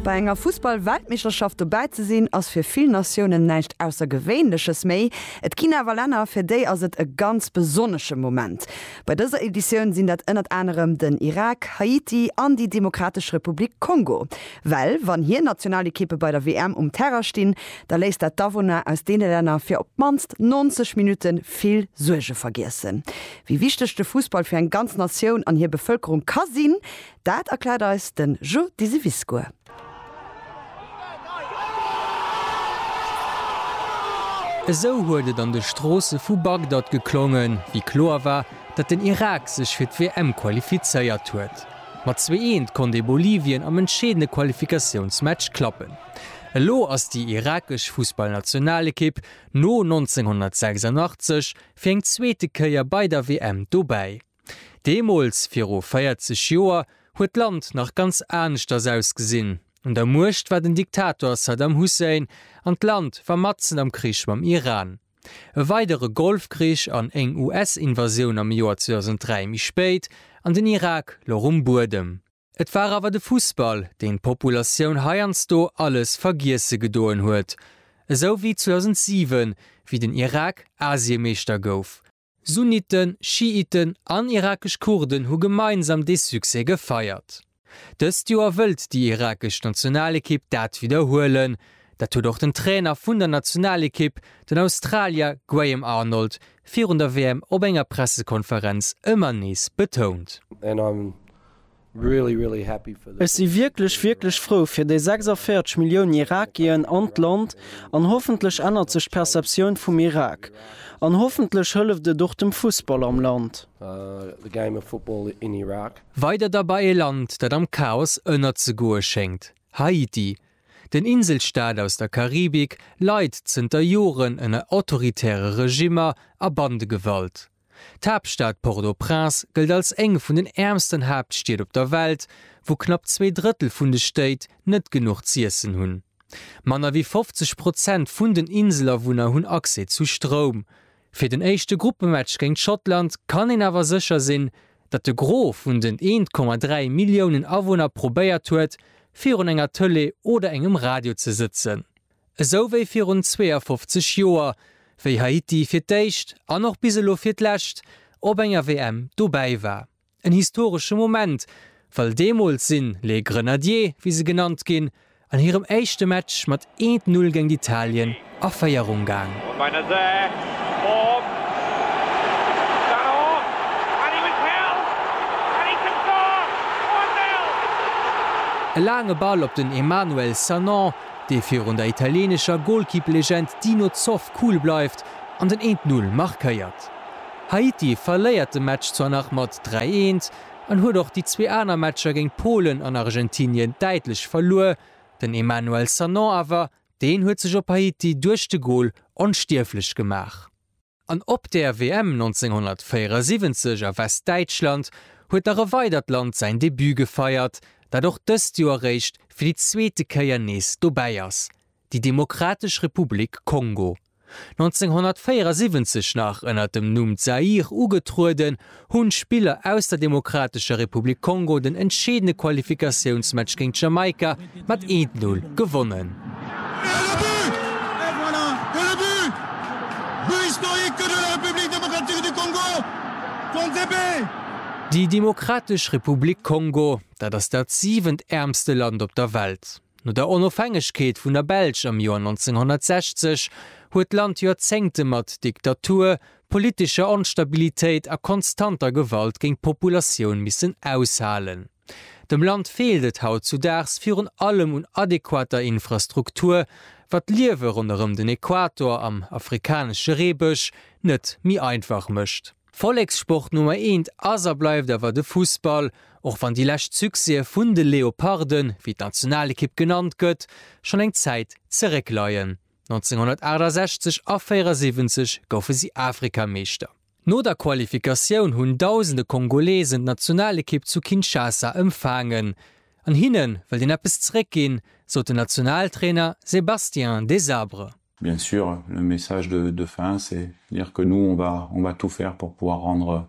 Bei enger Fussball-Weltmeeschterschaft dobäi ze sinn, ass fir vill Natiounen näischt Aussergewéinleches méi. Et ginn awer Länner, fir déi ass et e ganz besonnesche Moment. Bei dëser Editioun sinn dat ënnert anerem den Irak, Haiti an déi Demokratesch Republik Kongo. Well wann hir Nationalekippe bei der WM um Terrain stinn, da léisst dat d'Awunner aus deene Länner fir op d'mannst 90 Minutte vill Suerge vergiessen. Wéi wichteg de Fussball fir eng ganz Natioun an hir Bevëlkerung ka sinn, Dat erkläert eis de Jo Diseviscourt. Esou huet et an de Stroosse vu Bagdad geklongen, wéi kloer war, datt den Irak sech fir d'WM qualifizéiert huet. Mat zwee eent konnt ee Bolivien am entscheedende Qualifikatiounsmatch klappen. Elo ass déi irakesch Fussballnationalekipp no 1986 fir eng zweete Kéier bei der WM dobäi. Deemools, viru 40 Joer, huet d'Land nach ganz aneschters ausgesinn. Un der Muecht war den Diktator Saddam Hussein an d'Land war matzen am Krich mam Iran. E weidere Golfkrich an éng US-Invasioun am Joer 2003 méi spéit an den Irak louch um Buedem. Et war awer de Fussball, deen d'Populatioun heiansdo alles vergiesse gedoen huet. Esou wéi 2007, wéi den Irak Asiemeeschter gouf. Sunniten, Schiiten an irakesch Kurden hu gemeinsam dee Succès gefeiert. Dëst Joer wëllt déi irakesch Nationalekipp dat widderhuelen. Dat huet och den Trainer vun der Nationalekipp, den Australier Graham Arnold, virun der WM op enger Pressekonferenz ëmmer nees betount. Ech si wierklech, wierklech frou fir déi 46 Milliounen Irakien an d'Land, an hoffentlech ännert sech d'Perceptioun vum Irak, an hoffentlech hëlleft et och dem Fussball am Land. Weider da bei e Land, dat am Chaos ënnerzegoe schéngt, Haiti. Den Inselstaat aus der Karibik leit zënter Joren ënner autoritäre Regimmer a Bandegewalt. D'Haaptstad Port-au-Prince gëllt als eng vun den äermsten Haaptstied op der Welt, wou knapp zwee Drëttel vun de Stéit net genuch z'iessen hunn. Manner wéi 50 Prozent vun den Inselawunner hunn Accès zu Stroum. Fir den éischte Gruppematch géint Schottland kann een awer sécher sinn, datt de Gros vun den 1,3 Milliounen Awunner probéiert huet, virun enger Tëlee oder engem Radio ze sëtzen. Esou wéi virun 52 Joer, wéi Haiti fir d'éischt, an och bis elo fir d'lescht, op enger WM dobäi war. En historesche Moment, well deemools sinn Les Grenadiers, wéi se genannt ginn, an hirem éischte Match mat eent Null géint Italien a Féierung gaang. E laange Ball op den Emmanuel Sanon. dee virun der italieenescher Golkipplegend Dino Zoff cool bleift an den eent Null markéiert. Haiti verléiert de Match zwar nach mat dräi eent an huet och déi zwee aner Matcher géint Polen an Argentinien däitlech verluer, den Emmanuel Sanon awer, deen huet sech op Haiti duerch de Gol onstierflech gemaach. An op der WM 1974 a Westdäitschland huet nach e weidert Land säin Debut gefeiert, dat och dëst Joer eréischt fir déi zweete Kéier nees dobäi ass, déi Demokratesch Republik Kongo. 1974 nach ënner dem Numm Zaïre ugetrueden, hunn d'Spiller aus der Demokratescher Republik Kongo den entscheedende Qualifikatiounsmatch géint Jamaika mat 1, 0 gewonnen. Déi Demokratesch Republik Kongo, dat ass dat siwent äermste Land op der Welt. No der Onofhängegkeet vun der Belsch am Joer 1960 huet d'Land Joerzéngte mat Diktatur, politescher Onstabilitéit a konstanter Gewalt géing d'Populatioun missen aushalen. Dem Land feelt et hautzudaags virun allem un adequater Infrastruktur, wat d'Liewe ronderëm den Equator am afrikanesche Reebësch net méi einfach mécht. Vollekssport Nummer eent ass a bleift awer de Fussball, och wann déi lescht Succèse vun de Leoparden, wéi d'Nationalekipp genannt gëtt, schonn eng Zäit zeréckleien. 1968 a 74 goufe si Afrikameeschter. No der Qualifikatioun hunn dausende Kongolesen d'Nationalekipp zu Kinshasa ëmfaangen. An hinne wëllt een eppes zeréck ginn, sot den Nationaltrainer Sébastien Desabre. Bien sûr, le message de fin c'est dire que nous on va tout faire pour pouvoir rendre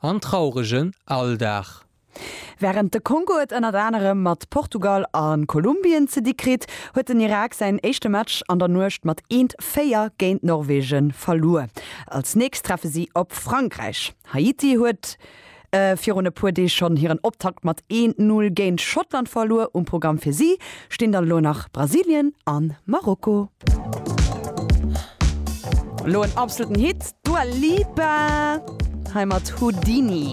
En trauregen Alldag. Wärend de Kongo et ënnert anerem mat Portugal a Kolumbien ze di kritt, huet den Irak säin éischte Match an der Nuecht mat eent 4 géint Norwegen verluer. Als nächst treffe si op Frankräich. Haiti huet virun e puer Deeg schonn hiren Optakt mat eent Null géint Schottland verluer. Um Programm fir si stinn dann elo nach Brasilien an Marokko. Elo en absoluten Hit, d'Dua Lipa hei mat Houdini.